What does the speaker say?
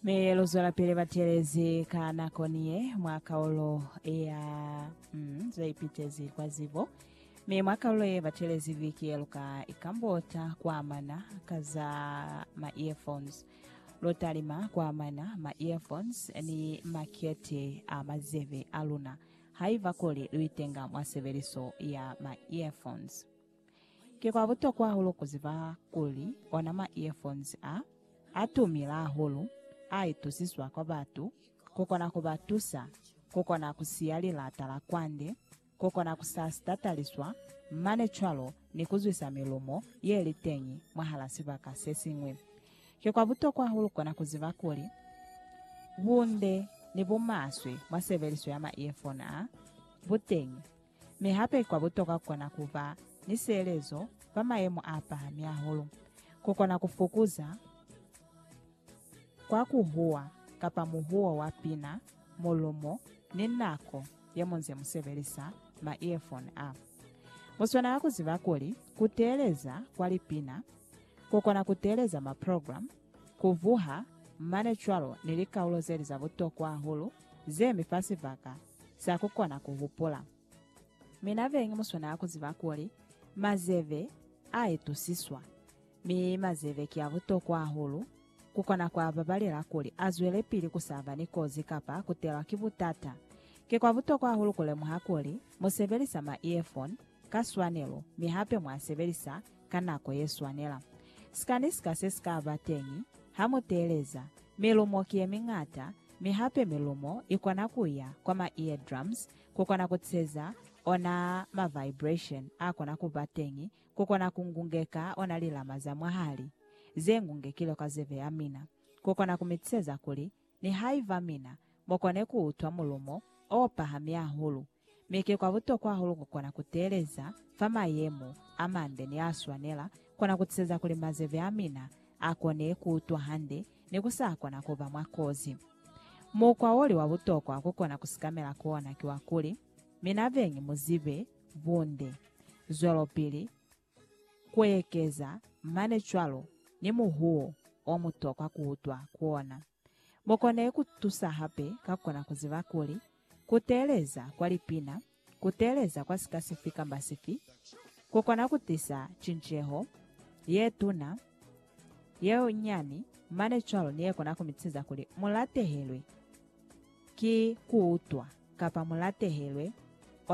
Mi luzwelapili batelezi ka nakoni ye mwa kaulo ya mm, zeipitezi kwa zibo. Mi mwa kaulo ye batelezi viki ye luka ikambota kuamana ka za ma earphones. Lutalima kuamana ma earphones ni makete a mazebe a luna haiba kuli luitenga mwa sebeliso ya ma earphones. Ki kwa butokwa hahulu ku ziba kuli ona ma earphones a, a tumile hahulu, a itusiswa kwa batu, ku kona ku ba tusa, ku kona ku siya lilata la kwande, ku kona ku sa sitataliswa, mane cwalo ni ku zwisa milumo ye li teñi mwahala sibaka se siñwi. Ki kwa butokwa hahulu kona ku ziba kuli, bunde ni bumaswe mwa sebeliso ya ma earphone a, bu teñi. Mi hape kwa butokwa kukona kuba ni sielezo fa mayemo a pahami hahulu, kukona kufukuza kwa kuhuwa kapa muhuwo wa pina, mulumo, ni nako yemunze musebelisa ma earphone a. Muswanela kuziba kuli kuteeleza kwa lipina, kukona kuteeleza ma program, kuvuha, mane cwalo ni likaulo zeli za butokwa hahulu zemi fa sibaka za ku kona ku hupula. Mi na bengi mu swanela ku ziba kuli mazebe a itusiswa, mi mazebe ki a butokwa hahulu ku kona ku a babalela kuli a zwelepili ku sa ba ni kozi kapa ku telwa ki butata. Ki kwa butokwa hahulu ku lemuha kuli mu sebelisa ma-earphone ka swanelo mi hape mwa a sebelisa ka nako ye swanela. Sikani sika se si ka ba teñi ha mu teeleza Milumo ki ye miñata, mi hape milumo i kona ku ya kwa ma eardrums ku kona ku ceza ona ma vibration a kona ku ba teñi ku kona ku ngungeka ona lilama za mwahali ze ngungekilwe kwa zeve ya mina, ku kona ku mi ceza kuli nihaiba mina mo kone ku utwa mulumo o pahami hahulu Mi ki kwa butokwa hahulu kukona kuteeleza fa mayemo amande ni aswanela, kona kutiseza kuli mazeve amina akone kuutwa hande ni kusakona kuba mwa kozi. Mukwa woli wa butokwa kukona kusikamela ku ona ki wa kuli, mina beñi muzibe bunde. Zwelopili Kuekeza mane cwalo ni muhuwo o mutokwa kuutwa ku ona. Mukone kutusa hape ka kona kuziba kuli, kuteeleza kwa lipina, kuteeleza kwa sika sifi kamba sifi, kukona kutisa cinceho, yetuna, yenyani, mane cwalo ni yekona kumitisa kuli mulatehelwe ki kuutwa kapa mulatehelwe